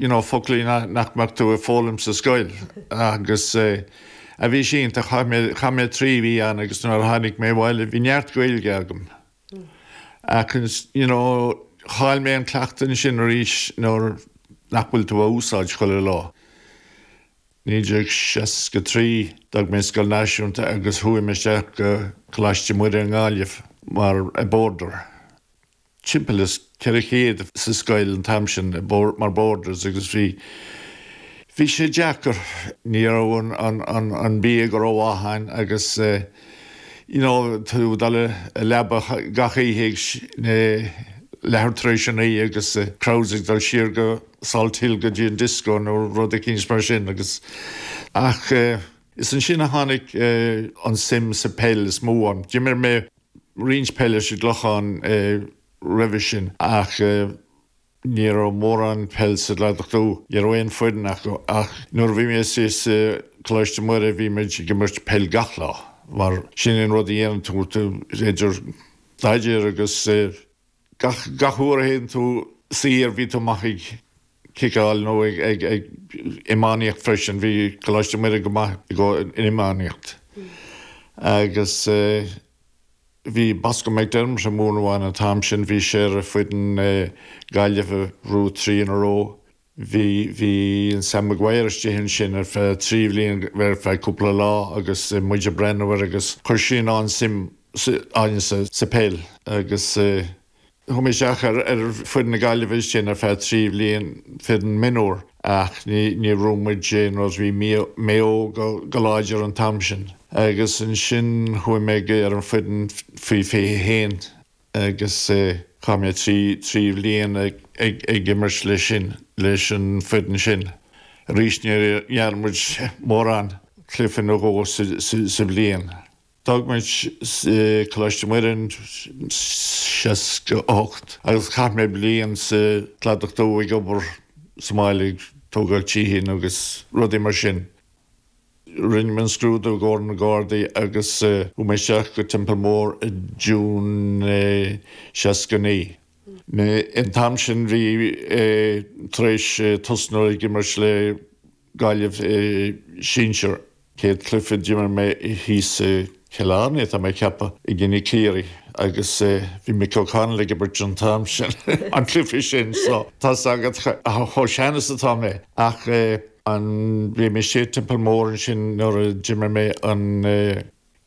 you know foclaí nach mbeadh tú ag foghlaim sa scoil agus bhí sé iontach chaith mé, chaith mé trí mhí ann agus nuair a tháinig mé abhaile bhí neart Gaeilge agam ach you know chaill mé an cleachtadh ansin arís nuair nach bhfuil tú á úsáid chuile lá. 1963 d'fhág mé Scoil Náisiúnta agus chuaigh mé isteach go Coláiste Mhuire i nGaillimh mar boarder. timpeall is 400 sa scoil an t-am sin mar boarders agus bhí bhí sé deacair. Ní raibh an bia rómhaith ann agus you know tá tú ag dul i leaba gach oíche ag leathuair tar éis a naoi agus crowds ag dul siar go Salt Hill go dtí an disco nó rud eicínt mar sin agus ach is ansin a tháinig an suim sa peil is mó ann. D'imir mé roinnt peile sa gClochán roimhe sin ach ní raibh mórán peil sa gCladach Dubh, ní raibh aon foireann acu ach nuair a bhí mé sa Coláiste Muire bhí muid ag imirt peil gach lá mar sin an rud a dhéanann tú, idir staidéar agus. Gach uair a théann tú saor bhí tú amuigh ag ciceáil nó ag iománaíocht freisin, bhí Coláiste Muire go maith i gcomhair an iománaíocht. Agus bhí Bosco McDermott ag múineadh ann an t-am sin, bhí sé ar foireann na Gaillimhe an Three in a Row Bhí, bhí an Sam Maguire istigh ansin ar feadh trí bhliain, ar feadh cúpla lá agus muid ag breathnú air agus chuir sé an-suim againn sa, sa peil agus chuaigh mé isteach ar, ar foireann na Gaillimhe ansin ar feadh trí bhliain, foireann mionúir, ach ní, níor bhuaigh muid aon rud, bhí Mia, Mayo go, go láidir an t-am sin. Agus ansin chuaigh mé ar an foireann faoi, faoi fiche haon. agus chaith mé trí trí bhliain ag ag imirt le sin leis an foireann sin arís níor imir muid mórán cluiche nó dhó sa sa sa bhliain. D'fhág muid Coláiste Muire in seasca a hocht agus chaith mé bliain sa Cladach Dubh ag obair sa mbaile ag tógáil tithe agus rudaí mar sin. Rinne mé an scrúdú i gcomhair na Gardaí agus chuaigh mé isteach go Templemore i June seasca naoi. An t-am sin bhí mé tar éis tosnú ag imirt le Gaillimh i Sinsear. Céad cluiche d'imir mé thíos i. Cill Airne, tá mé ag ceapadh i gcoinne Ciarraí agus bhí Mick O'Connell ag imirt an t-am sin, an cluiche sin, so tá's agat, chomh sean is atá mé, ach an bhí mé sa Teampall Mór ansin nuair a d'imir mé an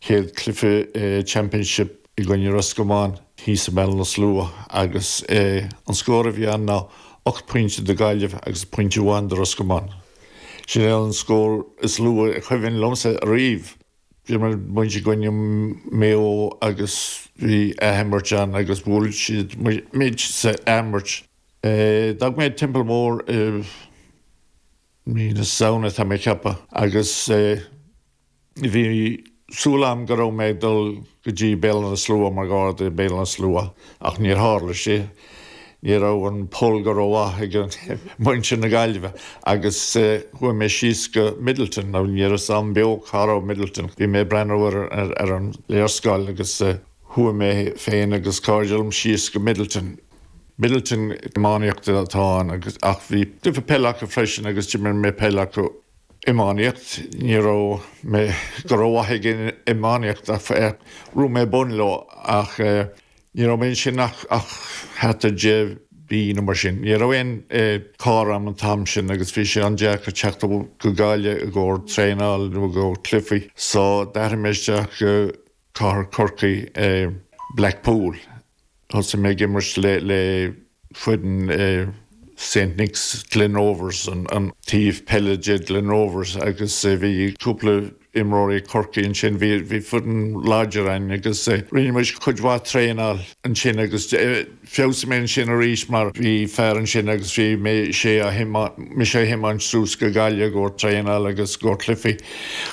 chéad cluiche Championship i gcoinne Roscommon thíos i mBéal Átha na Sluaighe agus an scór a bhí ann ná ocht bpointe do Gaillimh agus pointe amháin do Roscommon. Sin é an scór is lú a chuimhin liomsa ariamh. D'imir muid i gcoinne Maigh Eo agus bhí athimirt ann agus bhuail siad muid sa athimirt. D'fhág mé an Teampall Mór i mí na Samhna tá mé ag ceapadh agus bhí súil agam go raibh mé ag dul go dtí Béal Átha na Sluaighe, mar gharda ag Béal Átha na Sluaighe, ach níor tharla sé. Ní raibh an pull go rómhaith ag muintir na Gaillimhe agus chuaigh mé síos go Midleton, nó ní raibh a fhios a'm beo cá raibh Midleton. Bhí mé ag breathnú ar an léarscáil agus chuaigh mé féin agus cairde liom síos go Midleton. Midleton iománaíocht atá ann ach bhí cluiche peile acu freisin agus d'imir mé peil agus. iománaíocht. Ní raibh mé go rómhaith ag an iománaíocht ach raibh mé bun leo ach ní raibh mé ansin ach thart ar deich mí nó mar sin. Ní raibh aon carr a'm an t-am sin agus bhí sé an-deacair teacht go Gaillimh i gcomhair traenáil nó i gcomhair cluichí so d'athraigh mé isteach go cathair Chorcaí, Blackpool. Thosaigh mé ag imirt le foireann i Saint Nicks, Glen Rovers, an taobh peile de Glen Rovers agus bhí cúpla imreoirí Chorcaí ansin. Bhí foireann láidir againn agus rinne muid cuid mhaith traenáil ansin agus feabhsaigh mé ansin arís mar bhí fear ansin agus bhí mé sé á thiomáint, mise a thiomáint suas go Gaillimh i gcomhair traenáil agus i gcomhair cluichí.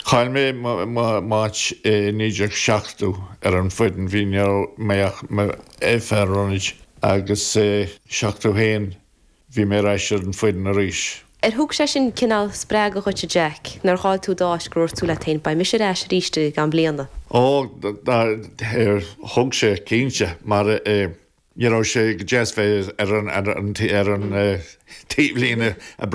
Chaill mé m'áit i 1970 ar an fhoireann. Bhí, ní raibh mé ach i m'fhear ionaid agus i 71 bhí mé ar ais ar an fhoireann arís. Ar thug sé sin cineál spreagadh dhuit a Jack, nuair a chaill tú d'áit gur dhúirt tú leat féin beidh mise ar ais arís i gceann bliana? Ó, thug sé, cinnte, mar ní raibh sé go deas bheith ar an taobhlíne a Brendan.